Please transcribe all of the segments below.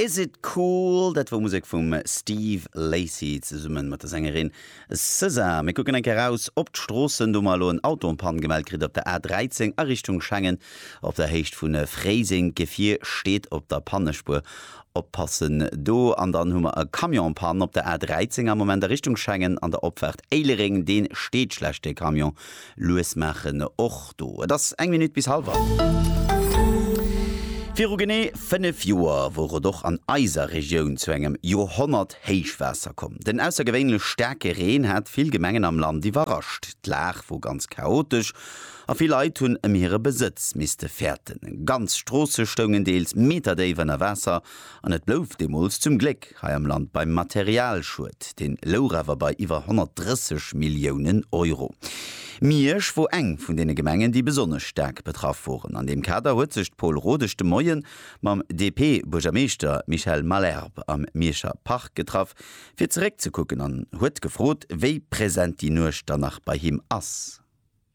Is It Cool? Dat wor Musek vum Steve Lacy zesummen mat der Sängerin SZA. Mir kucken eng Kéier raus op d'Stroossen, do hu mer elo en Auto en Panne gemellt kritt op der A 13 a Richtung Schengen op der Héicht vun Fréiseng. D'Gefier steet op der Pannespuer, oppassen do. An dann hu mer e Camion en Panne op der A 13 am Moment a Richtung Schengen an der Opfaart Éilereng. Dee steet schlecht, dee Camion, Lues maachen och do. Et ass eng Minutt bis halwer. Viru genee 5 Joer wor et och an eiser Regioun zu engem Joerhonnert-Héichwaasser komm. Den aussergewéinlech staarke Reen hat vill Gemengen am Land iwwerrascht. D'Lag wor ganz chaotesch a vill Leit hunn ëm hire Besëtz misste fäerten. Ganz Stroosse stoungen deels meterdéif ënner Waasser. An et blouf deemools zum Gléck hei am Land beim Materialschued. Deen louch awer bei iwwer 130 Milliounen Euro. Miersch wor eng vun deene Gemengen, déi besonnesch staark betraff woren. An deem Kader huet sech d'Paule Rodesch de Moien mam DP-Buergermeeschter Michel Malherbe am Mierscher Park getraff, fir zeréckzekucken an huet gefrot, wéi present déi Nuecht dann nach bei him ass.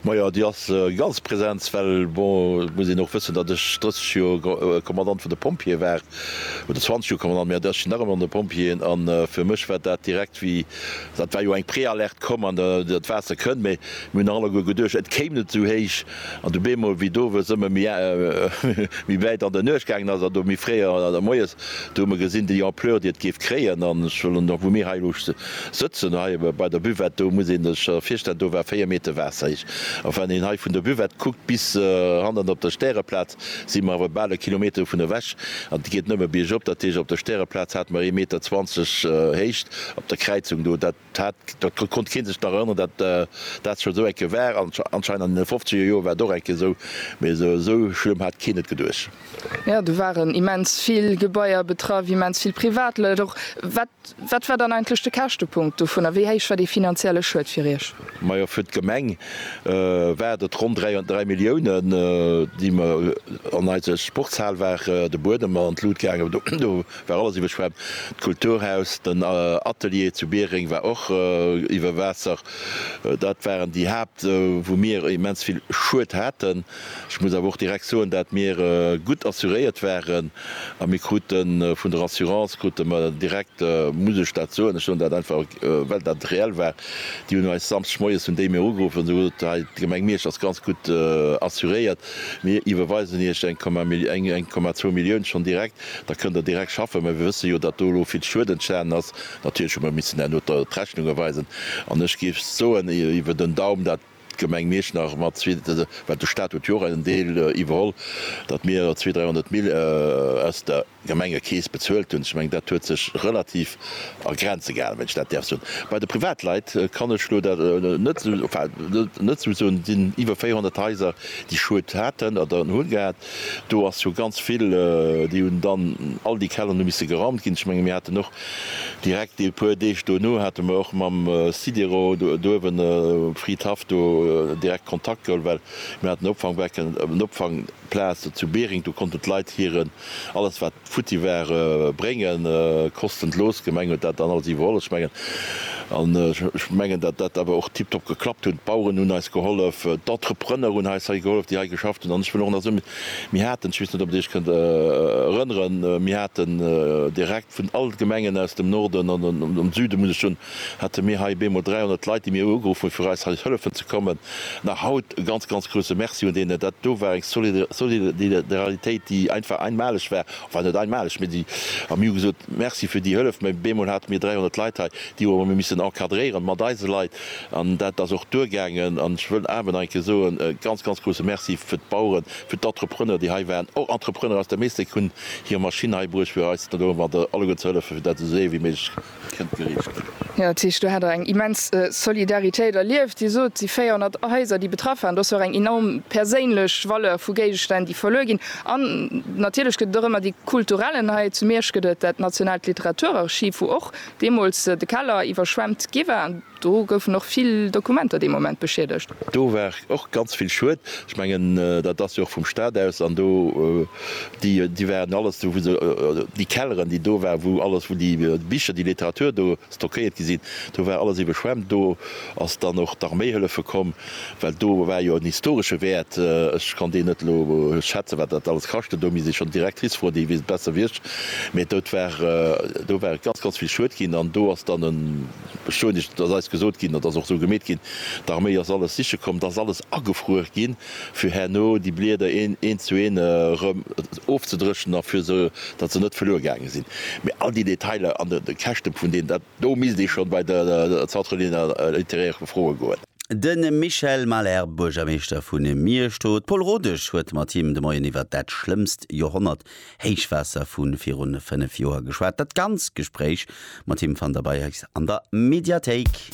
Majo, déi ass ganz Präsenz, well bon, et muss een och wëssen, datt ech 30 Joer Kommandant vun de Pompjeeë war, oder 20 Joer Kommandant, mee ech sinn nach ëmmer an de Pompjeeën, a fir mech war dat direkt wéi, dat war jo eng Préalerte, komm an dat Waasser kënnt, mee mir hunn nach alleguer geduecht, et kéim net esou héich, an du bemol, wéi d'Owes ëmmer méi wäit an der Nuecht gaangen ass, an do méi fréi an der Moies Do hu mer gesinn, déi Ampleur, déi et géif kréien, an ech wëll elo, wou mir hei elo sëtzen, hei bei der Buvette, do muss een sech virstellen, do war véier Meter Waasser héich. A wann een hei vun der Buvette kuckt bis hannen op der Stäreplaz, si mer awer bal e Kilometer dovun ewech, an et geet nëmme biergop. Dat heescht, op der Stäreplaz hate mer ee Meter zwanzeg Héicht op der Kräizung do. Dat Dat konnt kee sech nach erënneren, datt dat scho sou eng Kéier war. Anscheinend an deene fofzeger Joer war et och eng Kéier esou, mee esou schlëmm hat keen et geduecht. Jo, do waren immens vill Gebaier betraff, immens vill Privatleit och. Wat war dann eigentlech de Käschtepunkt dovun a wéi héich war dee finanzielle Schued fir Iech? Majo, fir d'Gemeng war et ronn dräi Milliounen, déi mer an eise Sportshal waren, de Buedem an d'Lut gaangen. War alles iwwerschwemmt. D'Kulturhaus, den Atelier zu Biereng war och iwwer Waasser. Dat waren déi Haapt, wou mir immens vill Schued haten. Ech muss awer och direkt soen, dat mir gutt assuréiert waren a mir kruten vun der Assurance krute mer direkt, muss ech dat soen, ech soen dat einfach well dat reell war, déi hunn eis Samschdeg moies hunn déi mir ugeruff an hu gesot, hei d'Gemeng Miersch ass ganz gutt assuréiert, mir iwwerweisen Iech eng Komma zwou Millioun schonn direkt. Da kënnt Der direkt schaffen. Mä mir wësse jo, datt do elo vill Schued entstanen ass. Natierlech hu mer missen herno d'Rechnunge weisen. An ech géif soen, iwwer den Daum, dat d'Gemeng Mierschnach mat zwee, well de Stat huet jo och en Deel iwwerholl, datt mir zwee, dräi honnert Mill aus der Gemengekeess bezuelt hunn. Ech mengen, dat huet sech relativ a Grenze gehalen, wann ech dat däerf soen. Bei de Privatleit kann ech elo dat net, enfin net esou soen. Et sinn iwwer 400 Haiser, déi Schued haten oder hunn gehat. Do ass jo ganz vill, déi hunn dann, all déi Kelleren hu misse geraumt ginn. Ech menge mir haten och direkt e puer Deeg dono hate mer och mam Sidero do'uewen, Fried Haff, do direkt Kontakt geholl, well mir haten e Opfangbecke, en Opfangplaz zu Bering, do konnten d'Leit hiren, alles wat futti ware bréngen koschten. D'Loos Gemeng huet dat dann alles iwwerholl mengen an ech mengen dat dat awer och tiptop geklappt hunn. D'Baueren hunn eis gehollef, d'Entrepreneur hunn eis hei gehollef déi hei geschafft hunn an ech wëll och nach soen mir haten, ech weess net ob dir iech kënnt erënneren, mir haten direkt vun all Gemengen aus dem Norden an dem Süden muss ech soen, hate mir hei bemol 300 Leit, déi mir ugeruff hunn, fir eis hei hëllefen ze kommen. An nach haut e ganz, ganz grouse Merci un deenen. Dat do war eng Solidaralitéit, déi einfach einmaleg war, enfin net einmaleg, mee déi, a mir hu gesot, Merci fir déi Hëllef. Mä bemol hate mir 300 Leit hei, déi hu mir missen encadréieren mat eise Leit. An dat ass och duergaangen. An ech wëll awer nach eng Kéier soen, e ganz, ganz grouse Merci fir d'Baueren, fir d'Entrepreneur, déi hei waren. Och Entrepreneur aus der Meeschteck hunn hir Maschinn hei bruecht, fir eis do alleguer ze hëllefen, fir dat esou séier wéi méiglech kënnt gereecht ginn. Jo, dat heescht do hat Der eng immens Solidaritéit erlieft. Dir sot, déi 400 Haiser, déi betraff waren, do ass jo och eng enorm perséinlech Valeur vu Géigestänn, déi verluer ginn. An natierlech gëtt et och ëmmer déi kulturellen, hei zu Miersch gëtt et dat nationaalt Literaturarchiv, wou och deemools de Keller iwwerschwemmt gi war. Do goufen och vill Dokumenter dee Moment beschiedegt. Do war och ganz vill Schued. Ech mengen, dat ass jo och vum Staat aus. An do, déi, déi waren alles do, wou se, déi Kelleren, déi do waren, wou alles, wou déi Bicher, déi Literatur do stockéiert gi sinn, do war alles iwweschwemmt. Do ass dann och d'Arméi hëllefe komm, well do war jo en historesche Wäert. Ech kann deen net elo schätzen, wat dat alles kascht huet. Do misst ee schonn d'Directrice froen, déi weess et besser wéi ech. Mee do war, do war ganz, ganz vill Schued ginn. An do ass dann e. Beschuldigt, et ass eis gesot ginn, et ass och esou gemeet ginn, d'Arméi ass alles siche komm, et ass alles agefruer ginn, fir herno déi Blieder een zu een erëm ofzedréchnen a fir se, datt se net verluer gaange sinn. Mee all déi Detailer an de Käschte vun deenen, dat do misst ee schonn bei de Centre littéraire froe goen. De Michel Mahler, Buergermeeschter vu Miersch, do. D'Paule Rodesch huet mat him de Moien iwwer dat schlëmmst Joerhonnert Héichwaasser vu virun 5 Joer geschwat. Dat ganzt Gespréich mat him fannt der bei eis an der Mediathéik.